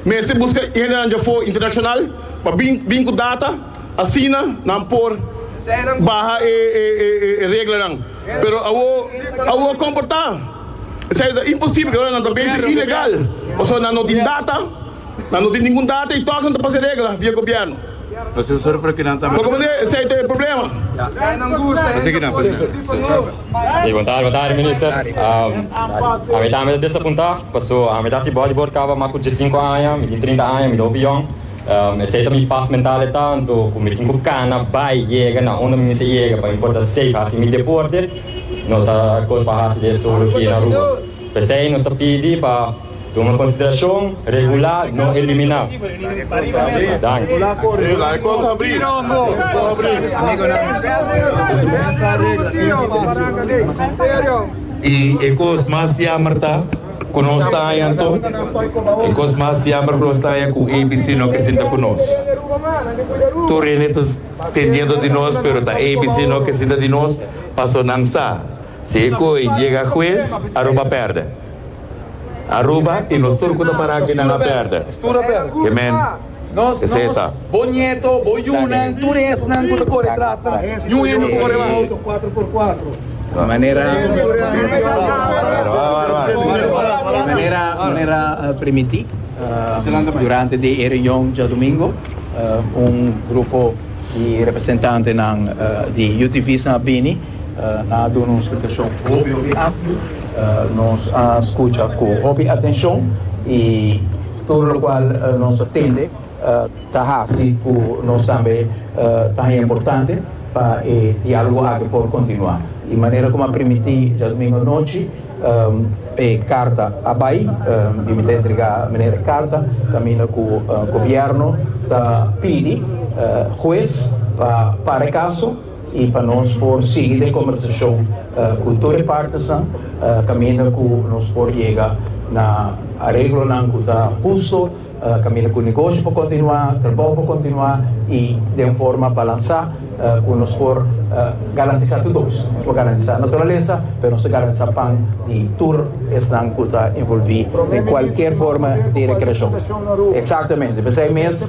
Mester buska hendenan dje afó internashonal pa bin ku data, asina nan por baha e reglanan. Pero awo, awo kon por ta? Esei ta imposibel i ora nan ta bensha ilegal pasobra nan no tin data, nan no tin ningun data i tòg nan ta pas e regla via gobièrnu. Poko manera esei ta e problema. E bontadi, bontadi minister. Ami tambe ta desapuntá paso ami ta hasi bodybord kaba mas ku diesinku aña, mi tin trinta aña, mi ta hopi yòn. Esei ta mi pas mental e tantu ku mi tin ku kana bai yega na unda mi mester yega pa mi por ta safe hasi mi deporte. No ta kos pa hasi di e solo aki na Aruba. P'esei nos ta pidi pa. Tuma konsiderashon, regulá, no eliminá. Danki. I e kos mas yamber ta ku nos ta haña anto. E kos mas yamber ku nos ta haña ku ABC no ke sinta ku nos. Tur hende ta tin diento di nos pero ta ABC no ke sinta di nos paso nan sa si e koi yega hues Aruba pèrdè. Aruba y nos tur cu ta para aki nan a perde. Ke men esey e ta. Bo nieto, bo yunan, tur esnan cu ta core detras nan, niun hende por core mas. Manera, manera, manera primiti, durante di e reunion djadomingo, un grupo di representantenan di UTV's nan a bini. Na a duna un splikashon hopi hopi amplu. Nos a skucha ku hopi atenshon i tur lokual nos a tende ta hasi ku nos tambe ta haña importante pa e diálogo aki por kontinuá. I manera ku mi a primintí djadumingu anochi e karta a bai i mi ta entregá Meneer e karta kaminda ku gobièrnu ta pidi hues pa para e kaso. y pa nos por sigui den conversacion cu tur e partesnan caminda cu nos por yega na areglonan cu ta husto, caminda cu negoshi por continua, trabou por continua y den un forma balansa cu nos por garantisa tur dos, nos por garantisa naturalesa pero nos ta garantisa pan di tur esnan cu ta involvi den cualkier forma di recreacion. Exactamente, p'esey mes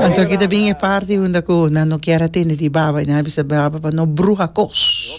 Anto aki ta bin e parti unda ku nan no kier a tende di baba i nan a bisa baba pa no bruha kos.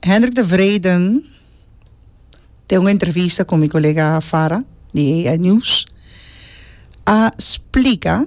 Hendrik de Wreden den un entrevista ku mi kolega Farah di AI News a splika